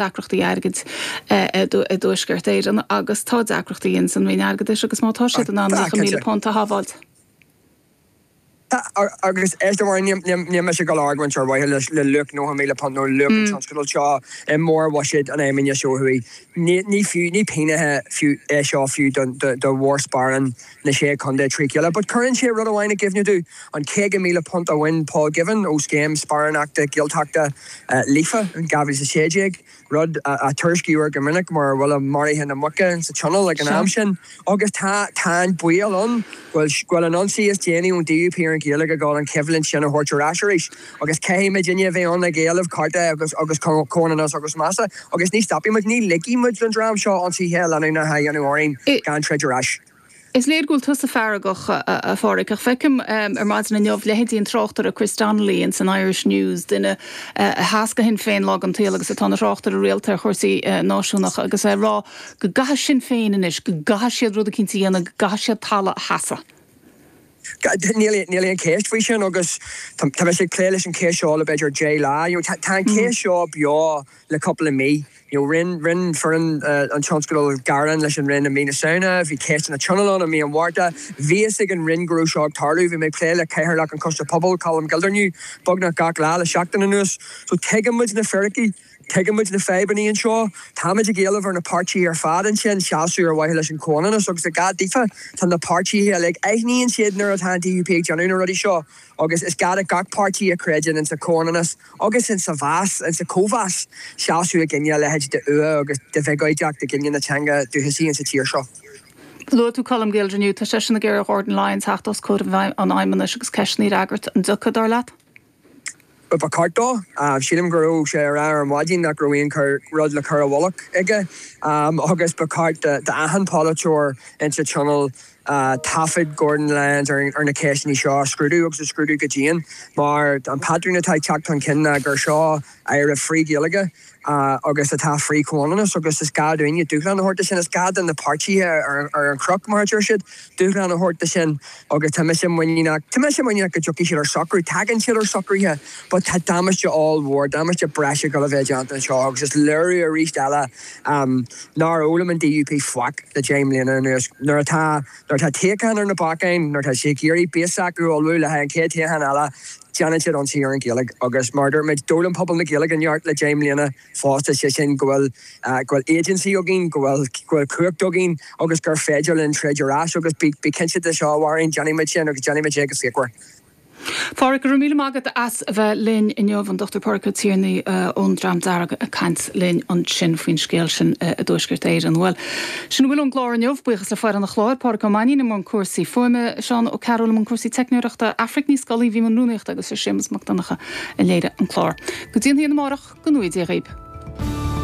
deacrachtaí airgid i dTuaisceart Éireann agus tá deacrachtaí ins an Roinn Airgeadais agus má tá siad in ann £90,000 a shábháilt. Agus éist a Mháirín, níl mise ag dul a argóint ar mhaithe le luach £90,000 nó luach an tionscadail seo i mórbhuiséad an Fheidhmeannais ó thuaidh. Ní pingin fiú é seo fiú do mhórsparán na sé contae trí chéile but cuireann sé rud amháin i gcuimhne domh, an £50,000 a bhain Paul Givan ó scéim sparánachta Gaeltachta Líofa in 2016, rud a tuairiscítear go minic mar bhuille maraithe na muice sa tionól ag an am sin. Agus tá tá an baol ann go bhfuil go bhfuil an ionsaí is déanaí ón DUP ar an Ghaeilge ag dul an choimhlint sin a thabhairt ar ais arís. agus caithfidh muidinne a bheith ann ag éileamh cearta agus agus comhionannas agus measa agus ní stopfaidh muid, ní ligfidh muid don dream seo ionsaithe leanúnacha a dhéanamh orainne gan troid ar ais. Is léir go bhfuil tusa feargach, a Phádraig, ach feicim ar maidin inniu leithéidí an tráchtaire Chris Donnelly ins an Irish News, duine a sheas do Shinn Féin lá den tsaol agus atá ina thráchtaire rialta ar chúrsaí náisiúnacha, agus é ag rá go gcaithfidh Sinn Féin anois, go gcaithfidh siad rud eicínt a dhéanamh, go gcaithfidh siad talamh a sheasamh. Níl aon cheist faoi sin agus tá mise ag plé leis an cheist seo le b'fhéidir deich lá. Tá an cheist seo beo le cúpla mí. Rinne foireann an tionscadail gearán leis an Roinn i mí na Samhna, bhí ceisteanna Tionóil ann i mí an Mhárta. Bhí fhios ag an Roinn go raibh seo ag tarlú, bhí mé ag plé le Cathaoirleach an Choiste Pobal, Colm Gildernew, beagnach gach lá le seachtain anuas. So tuigeann muid na firicí. Tuigeann muid na fadhbanna anseo. Táimid ag éileamh ar na páirtithe ar fad ansin seasamh ar mhaithe leis an chomhionannas agus is gá daofa tá na páirtithe uilig, aithníonn siad nuair atá an DUP ag déanamh na rudaí seo agus is gá do gach páirtí a chreideann insa chomhionannas agus insa mheas, insa chomh-mheas, seasamh i gcoinne a leithéid de fhuath agus de bhiogóideacht i gcoinne na teanga dúchasaí insa tír seo. Luaigh tú Colm Gildernew. Tá seisean ag iarraidh ar Ghordon Lyons theacht os comhair an fheidhmeannais agus ceisteanna a fhreagairt. An dtiocfaidh, dar leat? Ba, ba cheart dó. Sílim go raibh sé ag rá ar maidin nach raibh aon rud le cur i bhfolach aige agus ba cheart d'achan pholaiteoir insa Tionól taifead Gordon Lyons ar na ceisteanna seo a scrúdú agus a scrúdú go dian mar an patrún atá ag teacht chun cinn ná gur seo, Aire frith-Ghaeilge agus atá frith-chomhionannas agus is gá dúinne dúshlán a thabhairt do sin. Is gá do na páirtithe ar an chnoc, mar a deir siad, dúshlán a thabhairt do sin agus tá mise muiníneach, tá mise muiníneach go dtiocfaidh siad ar shocrú. Tagann siad ar shocruithe but tá damáiste ollmhór, damáiste breise dhul a bheith déanta anseo agus is léiriú arís eile nár fhoghlaim an DUP faic le deich mbliana anuas. Nuair atá. Nuair atá toghchán ar na bacáin, nuair atá siad ag iarraidh base s'acu a ullmhú le haghaidh an chéad toghchán eile, déanann siad ionsaí ar an Ghaeilge agus mar a dúirt muid, d'fhoghlaim pobal na Gaeilge neart le deich mbliana fosta, sé sin go bhfuil agency againn, go bhfuil cumhacht againn agus gur féidir linn troid ar ais agus bí cinnte de seo a Mháirín, déanfaidh muid sin agus déanfaidh muid é go fíochmhar. Pádraic, Go raibh míle maith agat as a bheith linn inniu, an Dr. Pádraic Ó Tiarnaigh ón Dream Dearg ag caint linn ansin faoin scéal sin i dTuaisceart Éireann. Bhuel, sin a bhfuil ón gclár inniu, buíochas le foireann an chláir, Pádraic Ó Mainnín i mbun cúrsaí fuaime, Seán Ó Cearúil i mbun cúrsaí teicneoireachta, Aifric Ní Scolaí bhí i mbun rúnaíochta agus ba é Séamus Mac Donncha a léirigh an clár. Go dtí an hAoine amárach, go ngnóthaí Dia dhaoibh.